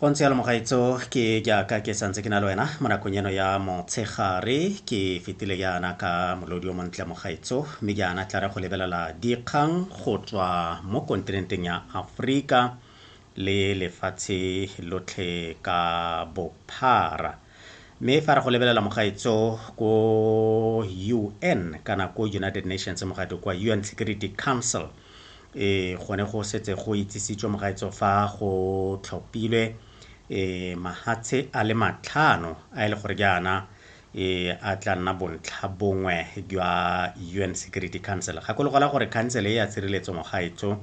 go ntse yalo mogaetso ke jaaka ke santse ke na le wena mo nakong eno ya motshegare ke fetile jaana ka molodi o montle mogaetso mme jaana tla re go lebelela dikgang go tswa mo kontinenteng ya aforika le lefatshe lotlhe ka bophara Mme fa re go lebelela mogaetso ko UN kana ko United Nations mogate kwa UN Security Council e gone go setse go itsisitswe mogaetso fa go tlhopilwe e mahatshe a le matlhano a e le gore jaana e a tla nna bontlha bongwe jwa UN Security Council gakologola gore council e ya tshireletso mogaetso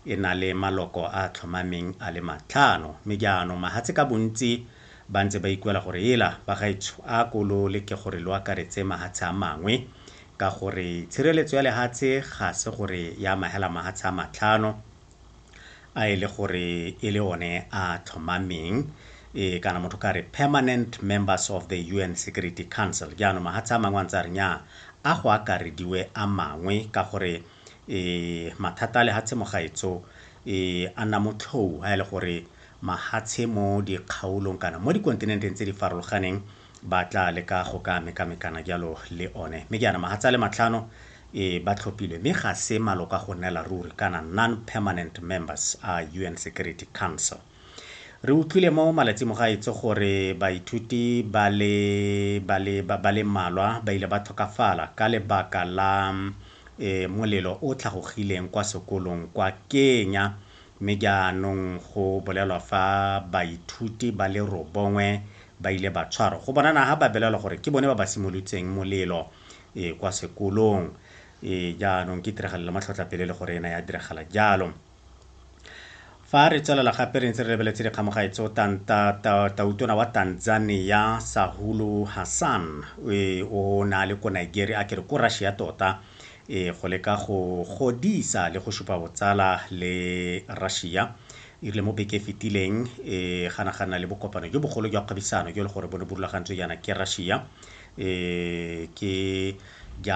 e na le maloko a tlhomameng a le matlhano mme jaanong mahatshe ka bontsi Ba ntse ba ikuela gore ela bagaetsho a ko lo leke gore lo akaretse mahatshe a mangwe, ka gore tshireletso ya lehatshe ga se gore e amahela mahatshe a matlhano a e le gore e le one a tlhomameng, e kana motho ka re permanent members of the UN Security Council. Jaanong mahatshe a mangwe a ntse a re nyaa a go akarediwe a mangwe ka gore e mathata a lehatshe mogaetso e a nna motlhou ha e le gore mahatshe mo dikgaolong kana mo dikontinenteng tse di farologaneng ba tla leka go ka mekamekana jalo le one. Mme jaana mahatshe a le matlhano e ba tlhophilwe mme ga se maloko a go nnela ruri kana non-permanent members a UN Security Council. Re utlwile mo malatsing mo gaetsho gore baithuti ba le ba le ba le mmalwa ba ile ba tlhokafala ka lebaka la molelo o tlhagogileng kwa sekolong kwa Kenya Mme jaanong go bolelwa fa baithuti ba le robongwe ba ile ba tshwarwa. Go bonana ga ba belelwa gore ke bone ba ba simolotseng molelo e kwa sekolong. E jaanong ke tiragalo le matlhotlhapelo e le gore e ne ya diragala jalo. Fa re tswelela gape re ntse re lebeletse dikgamogae tseo tautona wa Tanzania Sahulu Hassan o ne a le ko Nigeria a kere ko Russia tota e go leka go godisa le go supa botsala le Russia e rile mo beke e fetileng e ganagana le bokopano jo bogolo jwa kgwebisano jo le gore bo ne bo rulagantswe jaana ke Russia e ke